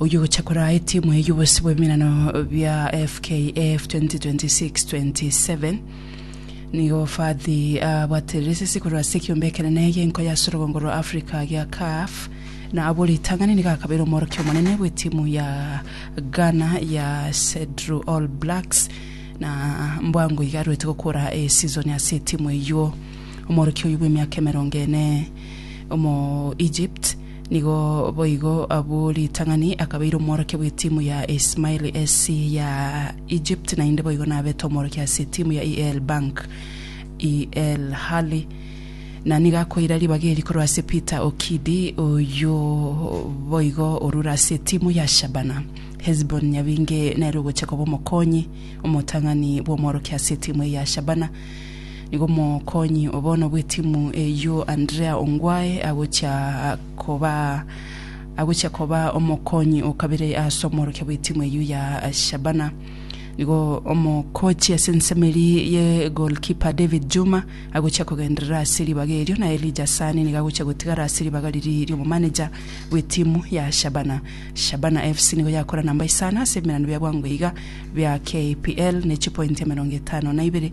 Oyio ogocha koraa etimu eye y'obosio bw'emerano bia FKF 2026-27, nigo Fadhi abwaterire esese korwa ase ekiombe ekenene gi'enko ya sorogongo rwa Africa gia CAF, na abwo ritang'ani nigo akabeire omworokia omonene bw'etimu ya Ghana ya Sedru All Blacks, na mbwango iga arwete gokora esizoni ase etimu eyio. Omworokia oyio bw'emiaka emerongo ene, omo-Egypt, Nigo boigo abwo ritang'ani akabeire omworokia bw'etimu ya Ismaili SC ya Egypt na inde boigo nabete omworokia ase etimu ya EL Bank EL Hali na nigo akoira ribaga eri korwa ase Peter Okidi oyio boigo orure ase etimu ya Shabana. Hezbon Nyabinge nere ogochia koba omokonyi omotang'ani bw'omworokia ase etimu eye ya Shabana Nigo omokonyi o bono bw'etimu eyio Andrea Ongwae agochia koba agochia koba omokonyi o kabere ase omworokia bw'etimu eyio ya Shabana. Nigo omokochi ase ensemo eria ye goalkeeper David Juma agochia kogenderera ase ribaga erio na Elijah Asani nigo agochia gotigara ase ribaga riria ri'omomanager bw'etimu ya Shabana. Shabana FC nigo yakora namba isano ase ebiminano bia bwango iga bia KPL ne chipointi emerongo etano na ibere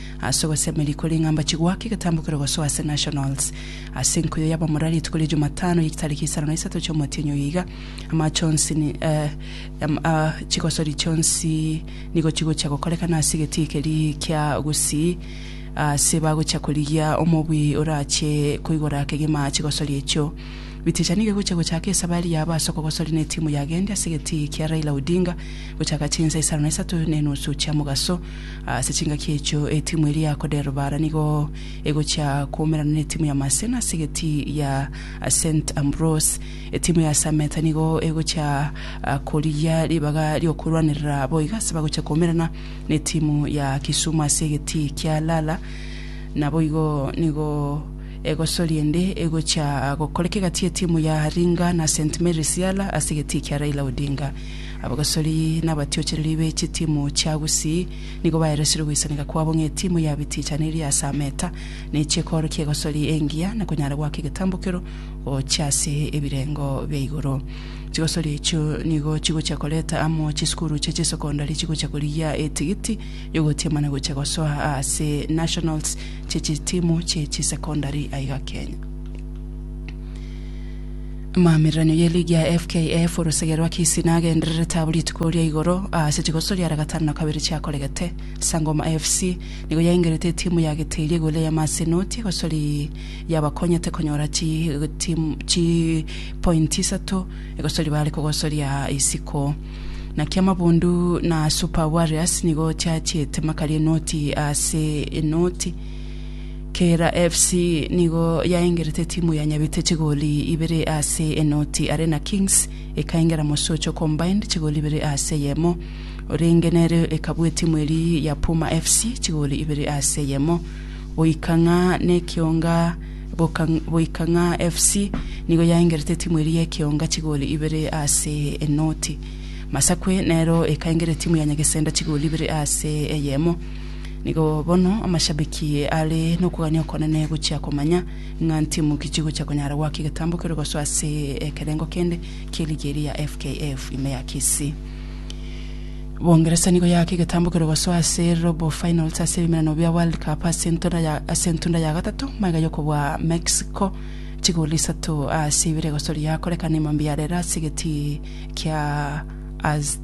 ase ogosemeria koria ng'a mbache goaka egetambo keria gosoa ase Nationals. Ase enkuyo y'abamura rituko ria Jumatano ye chitariki isano na isato chi'omotienyi oyo iga, amaache onsi ni, eh, am, ah, chigosori chionsi nigo chigochia gokorekana ase egetii keria kia Gusii, aase bagochia korigia omobui orache koigora kegima chigosori echio. Biticha nigo egochia gochaka esabari yabo ase okogosori n'etimu yagendi ase egetii kia Raila Odinga gochaka chinsa isano na isato n'enusu chia mogaso Ase chingaki echio etimu eria ya Koderubara nigo egochia koumerana netimu ya Masena ase egeti ya Saint Ambrose. Etimu ya Sameta nigo egochia korigia ribaga riokorwanerera boiga ase bagochia koumerana netimu ya Kisumu ase egeti kia Lala. Naboigo nigo egosori ende egochia gokoreka egati yetimu ya Ringa na Saint Mary's Yala ase egeti kia Raila Odinga. Abagosori na abatiochereri be chitimu chia Gusii nigo baereseire ogoisaneka kwabo ng'a etimu ya Bitichani eri ase ameta, nechia ekoro ki'egosori engiya na konyara goaka egetambokero gochia ase ebirengo bia igoro. Chigosori echio nigo chigochia koreta amo chisukuru chia chisokondari chigochia korigia etigiti y'ogotiamana gochia gosoa ase nationals chia chitimu chia chisekondari aiga Kenya. Amaamiranio ye ligi ya FKF orosegea rwa Kisii nagendererete abwo rituko ria igoro ase chigoso riare gatano na kabere chiakoregete. Sangoma FC nigo yaingerete etimu ya Gitiri igoro ya Masinoti egosori yabakonyete konyora chipointi isato egosori bare kogosoria isiko. Naki Amabundu na Super Warriors nigo chiachiete makari enoti ase enoti. Kera FC nigo yaengerete timu ya Nyabite chigoli ibere ase enoti are na Kings ekaengera Mosocho Combined chigoli ibere ase eyemo orenge nere ekabua etimu eri ya Puma FC chigoli ibere ase eyemo goika ng'a nekionga boka boika ng'a FC nigo yaengerete timu eri yekionga chigoli ibere ase enoti Masakwe nero ekaengera etimu ya Nyagesenda chigoli ibere ase eyemo Nigo bono amashabiki are nokogania okonene gochia komanya ng'a ntimu ki chigochia konyara goaka egetambo keria gosoa ase ekerengo kende kie ligi eria ya FKF ime ya Kisii. Boongeresa nigo yaaka egetambo keria gosoa ase robo finals ase ebimenano bia World Cup ase entona ya ase entunda ya gatato magega yokobua Mexico chigoli isato ase ibere egosoria yakorekana ime mambia yarera ase egeti kia Az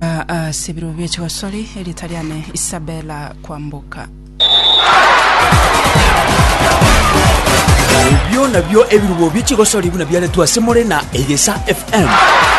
Ase ebirobu bie chigosori, erieta riane Isabella Kwamboka. Ebio nabio ebirubo bie chigosori buna biaretwe ase more na Egesa FM.